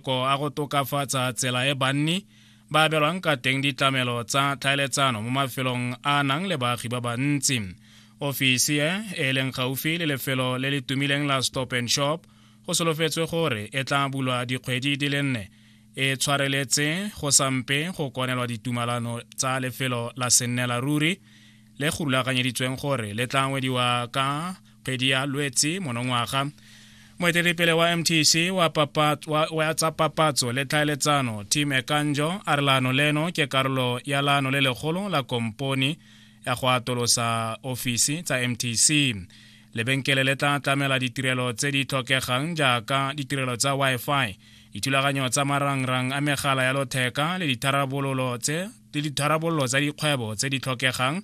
mafoko a go tokafatsa tsela e banni ba abelwang ka teng ditlamelo tsa tlhaeletsano mo mafelong a nang le baagi ba bantsi ofisi e e leng gaufi le lefelo le le tumileng la stop and shop go solofetswe gore e tla bulwa dikgwedi di le nne e tshwareletse go sampe go konelwa ditumalano tsa lefelo la sennela ruri le go rulaganyeditsweng gore le tla ngwediwa ka kgwedi ya lwetsi monongwaga moeteledipele wa mtc wa, papa, wa, wa tsa papatso le tlhaeletsano tim ekanjo a re laano leno ke karolo ya laano le legolo la komponi ya go atolosa ofisi tsa mtc lebenkele le tla tlamela ditirelo tse di tlhokegang jaaka ditirelo tsa wi-fi dithulaganyo tsa marangrang a megala ya lotheka le ditharabololo tse le ditharabololo tsa dikgwebo tse di tlhokegang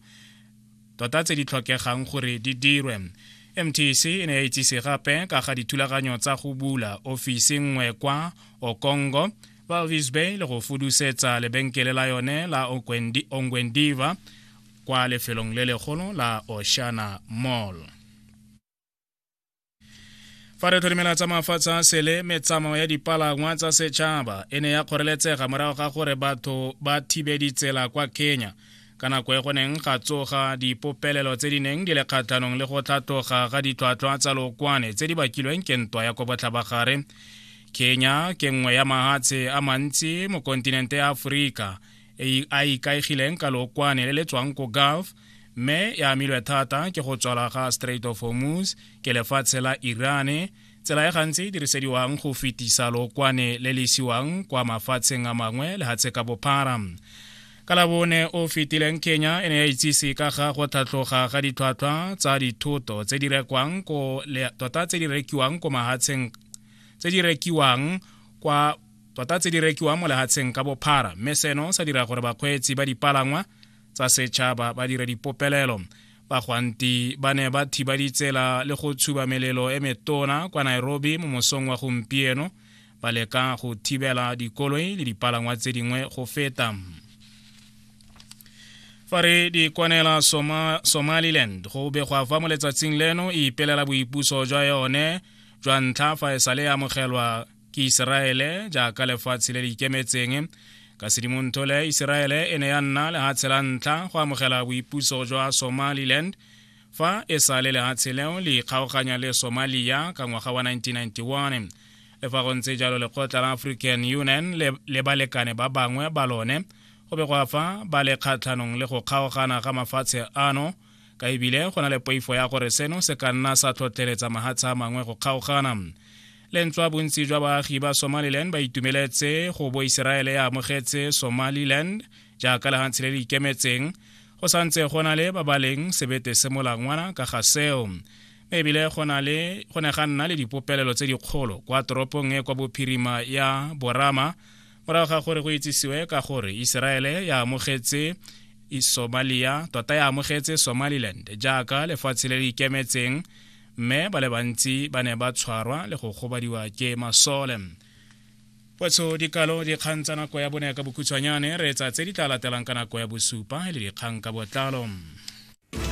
tota tse di tlhokegang gore di dirwe mtc e ne ya itsise gape ka ga dithulaganyo tsa go bula ofisi nngwe kwa okongo valvis bay le go fudusetsa lebenkele la yone la ongwendiva kwa lefelong le legolo la oshana mall fa re tlholemela tsa mafatshe a sele metsamao ya dipalangwa tsa setšhaba e ne ya kgoreletsega morago ga gore batho ba thibe ditsela kwa kenya ka nako e go neng ga tsoga dipopelelo tse di neng di le kgatlhanong le go tlhatloga ga ditlhwatlhwa tsa lokwane tse di bakilweng ke ntwa ya ko botlhabagare kenya ke nngwe ya mahatshe a mantsi mo kontinente ya aforika e, a ikaegileng ka lookwane le le tswang ko gulf mme e amilwe thata ke go tswala ga strait of hormuz ke lefatshe la irane tsela e gantsi e dirisediwang go fetisa lookwane le le isiwang kwa mafatsheng a mangwe lehatshe ka bophara ka labone o fetileng kenya e ne ya itsise ka ga go tlhatlhoga ga ditlhwatlhwa tsa dithoto tse di rekwang ko tota tse di rekiwang ko mahatsheng tse di rekiwang kwa tota tse di rekiwang mo lehatsheng ka bophara mme seno sa dira gore bakgweetsi ba dipalangwa tsa setšhaba ba dire dipopelelo bagwanti ba ne ba thiba ditsela le go tshuba melelo e metona kwa nairobi mo mosong wa gompieno ba leka go thibela dikoloi le dipalangwa tse dingwe go feta fa re di kwanela Soma, somaliland go begwa fa mo letsatsing leno e ipelela boipuso jwa yone jwa ntlha fa e sale e amogelwa ke Iseraele jaaka lefatshe le le ikemetseng ka sedimontole Iseraele e ne ya nna lehatshe la ntlha go amogela boipuso jwa Somaliland fa e sa le lehatshe leo le ikgaoganya le Somalia ka ngwaga wa 1991 le fa go ntse jalo lekgotla la African Union le, le balekane ba bangwe ba lone go be go afa ba le kgatlhanong le go kgaogana ga mafatshe ano ka ebile go na le poifo ya gore seno se ka nna sa tlhotlheletsa mahatsha a mangwe go kgaogana lentswa bontsi jwa baagi ba somaliland ba itumeletse go bo iseraele ya amogetse somaliland jaaka lehantshe le le ikemetseng go santse go na le ba ba leng sebete se molangwana ka ga seo mme ebile go ne ga nna le dipopelelo tse dikgolo kwa toropong e kwa bophirima ya borama morago ga gore go itsisiwe ka gore iseraele ya amogetse somalia tota ya amogetse somaliland jaaka lefatshe le le ikemetseng mme ba le bantsi ba ne ba tshwarwa le go kgobadiwa ke masole potsho dikalo dikgang tsa nako ya bone ka bokhutshwanyane re etsa tse di tla latelang ka nako ya bosupa le dikgang ka botlalo